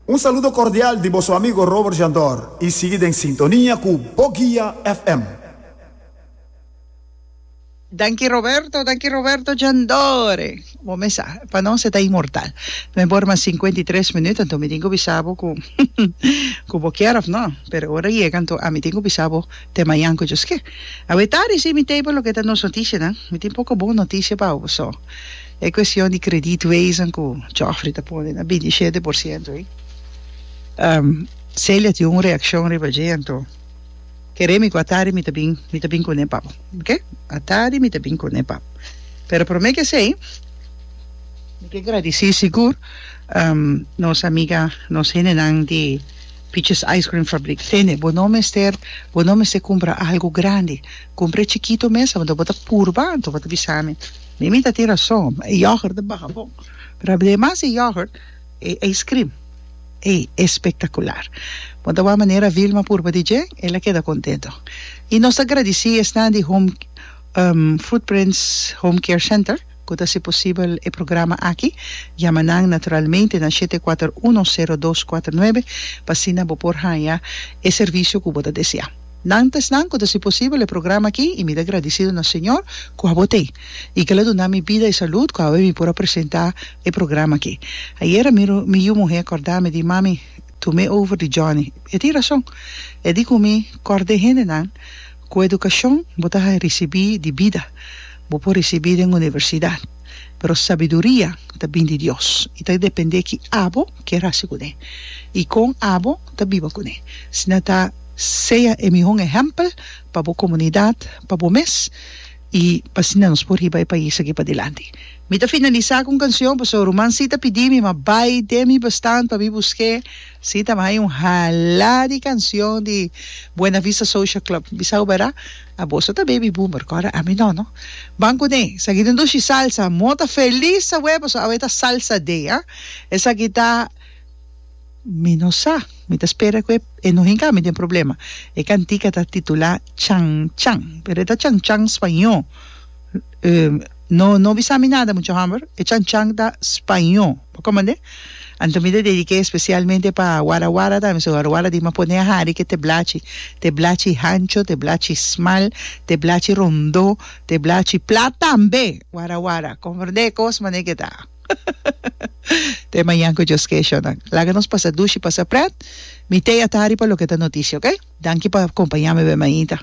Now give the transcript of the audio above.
Un saludo cordial di boso amigo Robert Jandor y sigui den sintonia cu Bo Guia FM. Danki Roberto, danki Roberto Jandor. Bo mes sa, pa nos e ta inmortal. Mei bor mas cincuenta y tres minuut anto mi tin cu bisa bo cu cu bo kier of no, pero ora yega anto ami tin cu bisa bo te mayan cu djoske. Awe tardi si mi table loke ta nos noticianan. Mi tin poco bon noticia pa bo so. E cuestion di credit wezen cu Geoffrey ta pone na binti shete por ciento ey, Celia tin un reaccion riba dje, anto kere mi cu atari mi ta bin, mi ta bin cune pap, ok, atari mi ta bin cune pap, pero prome cu esey mi ke gradici sigur nos amiga, nos hendenan di Peaches Ice Cream Fabriek, Tene, bo no mester, bo no mester cumpra algo grandi, cumpra e chikito mes, anto bo ta purba, anto bo ta bisa mi. Mi mi ta tira so, e yoghurt ta baha bon, pero ademas e yoghurt e ice cream ey espectacular. Bo ta wak manera Vilma purba di dje, el a keda contento. Y nos ta gradici esnan di Home Footprints Home Care Center cu ta haci posibel e programa aki. Yama nan naturalmente na shete kuater uno sero dos kuater nuebe pa asina bo por haya e servicio cu bo ta desea. Nan ta esnan cu ta haci posibel e programa aki y mi ta agradecido na Señor cu abo ta ey y cu el a duna mi bida y salud cu awe mi por a presenta e programa aki. Ayer a miro mi yu muhe corda mi di, Mami, tu me over di Johnny. E tin razon. E di cu mi, Cord den hendenan cu educacion bo ta haci ricibi di bida, bo por ricibi den universidad, pero sabiduria ta bin di Dios y ta depende ki abo kier haci cune y con abo ta biba cune. Asina ta. Sea e mihon ehèmpel pa bo komunidat, pa bo mes i asina nos por hiba e pais aki padilanti. Mi ta finalisá ku un kansion pasobra ruman Sita pidi mi ma bai den mi bestan pa mi busk'é. Sita mi haya un halá di kansion di Buena Vista Social Club. Bisao bera? A boso ta baby boomer ku ora ami no, no? Ban kuné, esaki den dushi salsa. Mota felis awe pasobra awe ta Salsa Day, a. Esaki ta. Mi no sa. Mi ta spera cu e no hinca mi den problema. E cantica ta titula Chan Chan, pero e ta Chan Chan spaño. No no bisa mi nada mucha homber, e Chan Chan ta spaño. Bo comprende? Anto mi ta dedica especialmente pa Wara Wara tambe, so Wara Wara di mi a pone a hari cu te blachi. Te blachi hancho, te blachi smal, te blachi rondo, te blachi plat tambe. Wara Wara, comprende e cos manera cu e ta. Te mañan cu Dios ke'sha nan. Laga nos pasa dushi pasa pret. Mi tei a ta riba loke ta noticia ok. Danki pa compañami be mainta.